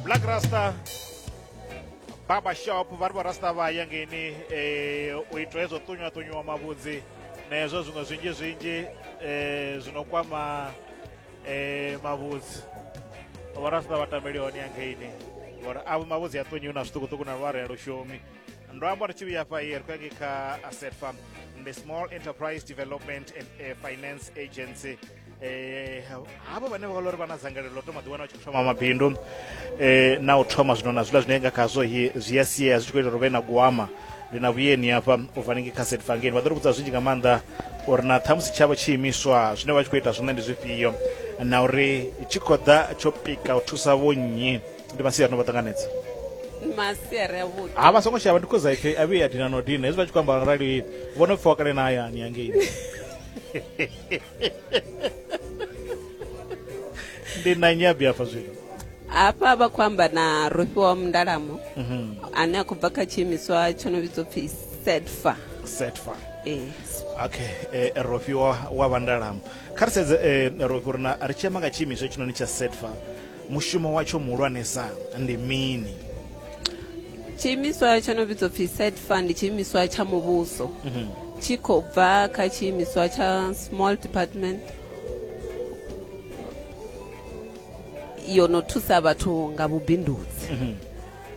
black rasta barber shop vha ri vharasta vha ya ngeini um u itwa hezwo ṱunywa ṱunywa mavhudzi na hezwo zwiṅwe zwinzhi zwinzhi um zwi no kwama um mavhudzi vharasta vha tambeli hone ya ngeini ngori avho mavhudzi a ṱunyiwi na zwiṱukuṱuku na lware lushumi ndo amba ri tshi vhuya fha i ri khou yange kha asset farm ndi small enterprise development and uh, finance agency eh havho vhane vha vha uri vha na dzangalelo ḽo thoma ḓiwana vha tshi thoma mabindu eh na u thoma zwino na zwiḽa zwine nga khazwo zwi a sia zwi tshi khou ita uri vhe na guama ndi na vhuyeni hafha u bva ningi kha setfangeni vha ḓo ri vhudza zwinzhi nga maanḓa uri na ṱhamusi tshavho tshi imiswa zwine vha tshi khou ita zwone ndi zwifhio na uri tshi khou ḓa tsho pika u thusa vho nnyi ndi masiari no vha ṱanganedza masiari avhuḓi ha vha songo shavha ndi khoza ipfi a vhuye a dina no dina hezwi vha tshi khou amba arali vho no pfhiwa kale na hayani yangeini ndi na nnyi abi hafha zwino hafha vha khou amba na rofhiwa wa mundalamo Mhm. ane a khou bva kha tshiimiswa tsho no vhidzwa pfi sedfa setfa ee okay eh, rofi wa, wa vandalamo kha ri sedze eh, rofi uri na ri tshi amba nga tshiimiswa hetshinoni tsha setfa mushumo watsho muhulwanesa ndi mini tshiimiswa tsho no vhidzwa pfhi set fund tshiimiswa tsha muvhuso mhm. tshi khou bva kha tshiimiswa tsha small department yo no thusa vhathu nga vhubindudzi mhm.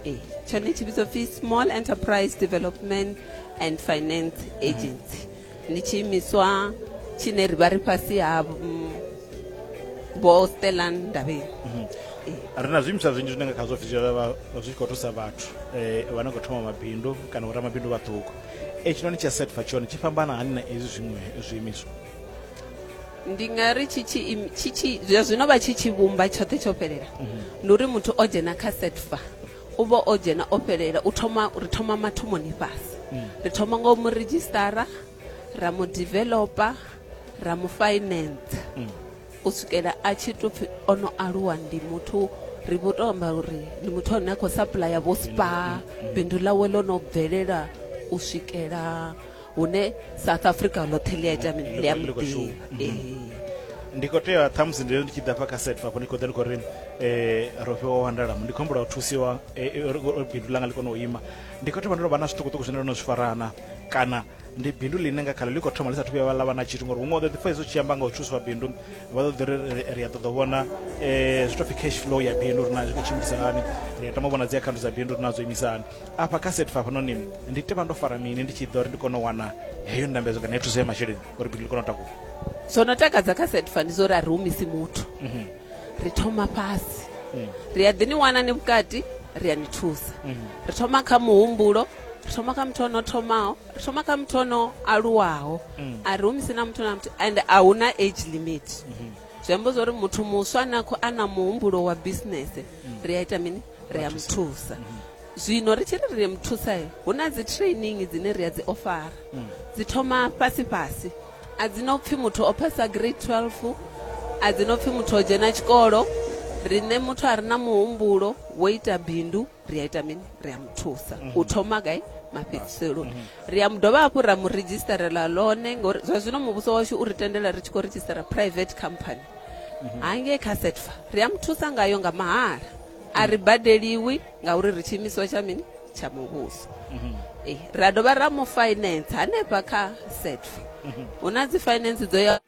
e, tshone tshi vhidzwa pfhi small enterprise development and finance agency ndi tshiimiswa tshine ri vha ri fhasi ha mm, vho stella ndavheni ri na zwiimiswa zwinzhi zwine nga khazwo zwi dzhiela vha- zwi tshi khou thusa vhathu um vha no khou thoma mabindu kana vhoramabindu vhaṱuku e tshinoni tsha setfa tshone tshi fhambana hani na ezwi zwiṅwe zwiimiswa ndi nga ri tshi tshi im- tshi tshi zwa zwino vha tshi tshi vhumba tshoṱhe tsho fhelela ndi uri muthu o dzhena kha setfa u vha o dzhena o fhelela u thoma ri thoma mathomoni fhasi ri thoma nga u mu redzhisitara ra mu developer ra mu finance u swikela a tshi to pfi o no aluwa ndi muthu ri vho to amba uri ndi muthu ane a khou supplya vho spa bindu ḽawe ḽo no bvelela u swikela hune south africa ḽoṱhe ḽi a ita mini ḽi a muḓini ndi khou tea ṱhamusi ndi ndi tshi ḓa fha kha set fafho ndi khou ḓa ndi khou ri um ro fhiwa wandalamo ndi khou humbula u thusiwa bindu langa ḽi kone u ima ndi khou thoma ndo no vha na zwiṱukuṱuku zwine ndo no zwi farana kana ndi bindu ḽine nga khaḽo ḽi khou thoma ḽi sathu vhuya ḽa vha na tshithu ngori huṅwe ḓo ḓi pfa izwo tshi amba nga u thuswa bindu vha ḓo ḓi ri ri a ṱoḓa u vhona um zwi to pfi cash flow ya bindu uri na zwi khou tshimbilisa hani ri a tama u vhona dzi akhaunthu dza bindu uri na dzo imisa hani Afha kha set fhafhanoni ndi tea vha ndo fara mini ndi tshi ḓo ri ndi kone u wana heyo ndambedzo kana ya thuso ya masheleni uri bindu ḽi kone u takuwa? Zwo no takadza kha set fa ndi zwa uri a ri humisi muthu mhm. ri thoma fhasi mhm. ri a ḓi ni wana ni vhukati ri a ni thusa mhm. ri thoma kha muhumbulo ri thoma kha muthu ono thomaho ri thoma kha muthu ono aluwaho mm. a ri humisi na muthu na muthu and a hu na age limit zwi amba zwa uri muthu muswa a na muhumbulo wa bisinese mm. ri a ita mini ri a mu thusa zwino ri tshi ri ri mu thusa hu na dzi training dzine ri a dzi ofara mm. dzi thoma fhasi fhasi a dzi no pfhi muthu o phasa grade 12 a dzi no pfhi muthu o dzhena tshikolo riṋe muthu a re na muhumbulo wo ita bindu ri a ita mini ri a mu thusa mm -hmm. u mhm. thoma gai mafhedziseloni mm -hmm. ri a mu dovha hafhu ra mu redzhistarela lone ngori zwa zwino muvhuso washu u ri tendela ri tshi khou redzhistara private company hangei kha setfa ri a mu thusa ngayo nga mahala a ri badeliwi ngauri ri tshiimiswa tsha mini tsha muvhuso mhm. eh, ra dovha ra mu finance hanefha kha setfa mhm. hu na dzi finance dzo ya